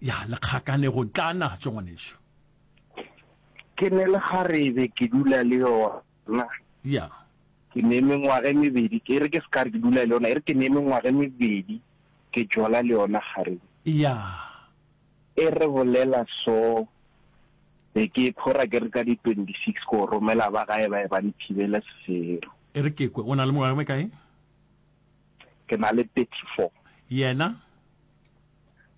Ya lekgakanego tla natso ngwanešu. Ke ne le kgarebe ke dula le yona. Ya. Ke ne mengwaga e mebedi ke e re ke se ka re ke dula le yona e re ke ne mengwaga e mebedi ke jola le yona kgarebe. Ya. E re bolela so be ke e phora ke re ka di 26 ko romela ba gae ba e ba nthibele sefero. E re ke kwe o na le mengwaga e mekae? Ke na le 34. Yena?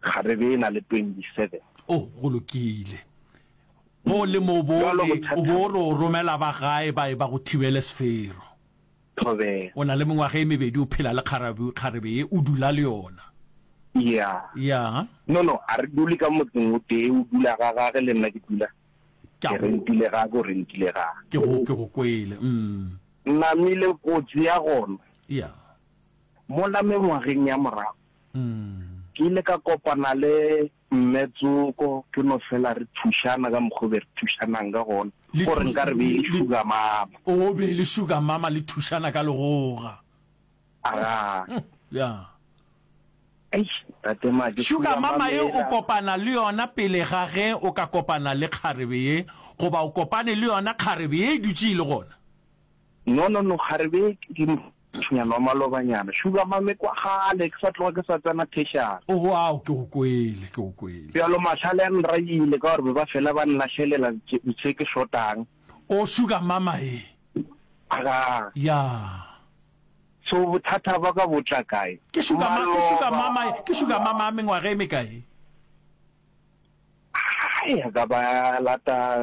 kgarebe e na le 27. Oh, go lokile. O le mobore, o bo o re o romela ba gae ba e ba go thibele sefero. Thobela. O na le mengwaga e mebedi, o phela le kgarabe, kgarebe ye, o dula le yona. Ya. Ya. No, no, a re dule ka motseng o tee, o dula ga gage, le nna ke dula Ke a ke go- rentile ga ke o rentile ga. Ke go, ke go kwele. Mm. Namile kotsi ya gona. Ya. Mola mengwageng ya morago, Ke ile ka kopana le Mme Tsoko, ke no fela re thušana ka mokgo be re thušanang ka gona. Go re nka re be e le sugar mama. O be e le sugar mama le thušana ka legoga. Aga. Ya. Eish, Tate Make. Sugar mama ye o kopana le yona pele ga ge o ka kopana le kgarebe ye, goba o kopane le yona kgarebe ye e dutše e le gona? No, no, no, ga re bee ke mothunyana wa malobanyana. Sugar mame, kwa kgale ke sa tloga ke sa tsena tertiary. Oho, ao, ke go kwele, ke go kwele. Bjalo mahlale a nrayile ka gore be ba fela ba nlahlelela ditše ke šotang. O sugar mama e. Aga. Ya. So bothata ba ka bo tla kae? Ke sugar ma, ke sugar mama e, ke sugar mama a mengwaga e mekae? Hai, a ka ba lata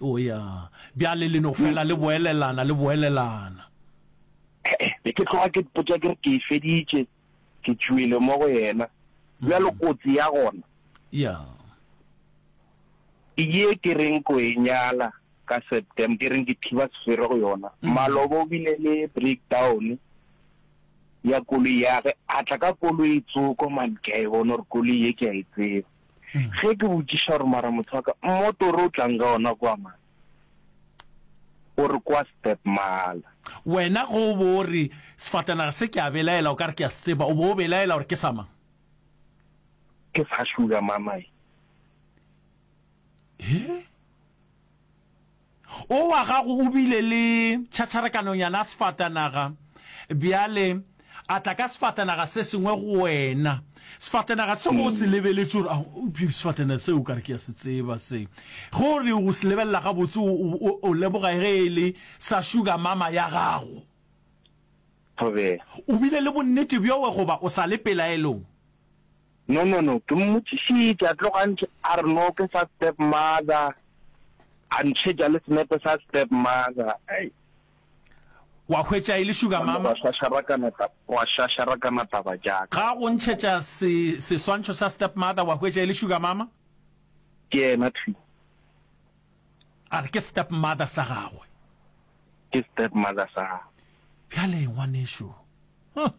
O ya. Bjale le no fela le boelelana, le boelelana. He-e, be ke tloga ke mpotša ke re, Ke e feditše, ke tšwele mo go yena. Bjalo kotsi ya gona. Ya. Ke ye ke reng ko e nyala ka Septem, ke reng ke thiba sefere go yona. Maloba o bile le breakdown ya koloi ya ge, a tla ka koloi tsoko man, ke a e bona gore koloi ye ke a e tseba. Ge ke botšiša gore mara motho wa ka, mmotoro o tlang ka ona kwa mang? O re kwa Stepmala. Wena ge o bo o re sefatanaga se ke a belaela o ka re ke a se tseba, o bo o belaela gore ke sa mang? Ke sa Sugar Mamae. He? O wa gago o bile le tšhatšharakanonyana ya sefatanaga, bjale a tla ka sefatanaga se sengwe go wena. Sefatanaga seo o se lebeletše gore, a, eupša sefatanaga seo o ka re ke a se tseba se. Ge o re o se lebelela gabotse, o, o, o, o leboga ge e le sa sugar mama ya gago. Thobela. O bile le bonnete bjo we goba o sa le pelaelong? No no no, ke mmotšišitše a tloga a ntšhe a re no ke sa step mother, a ntšhetša le senepe sa step mother, ai. Wa hwetša e le sugar Gona mama. gwa šašarakana ta, gwa šašarakana taba tša ka. Ga go ntšhetša se, seswantšho sa step mother, wa hwetša e le sugar mama. Ke yena thwi. A re ke step mother sa gagwe. Ke step mother sa gagwe. Bjale ngwanešu, huh.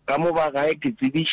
Ka mo ba gae ke tsebiš.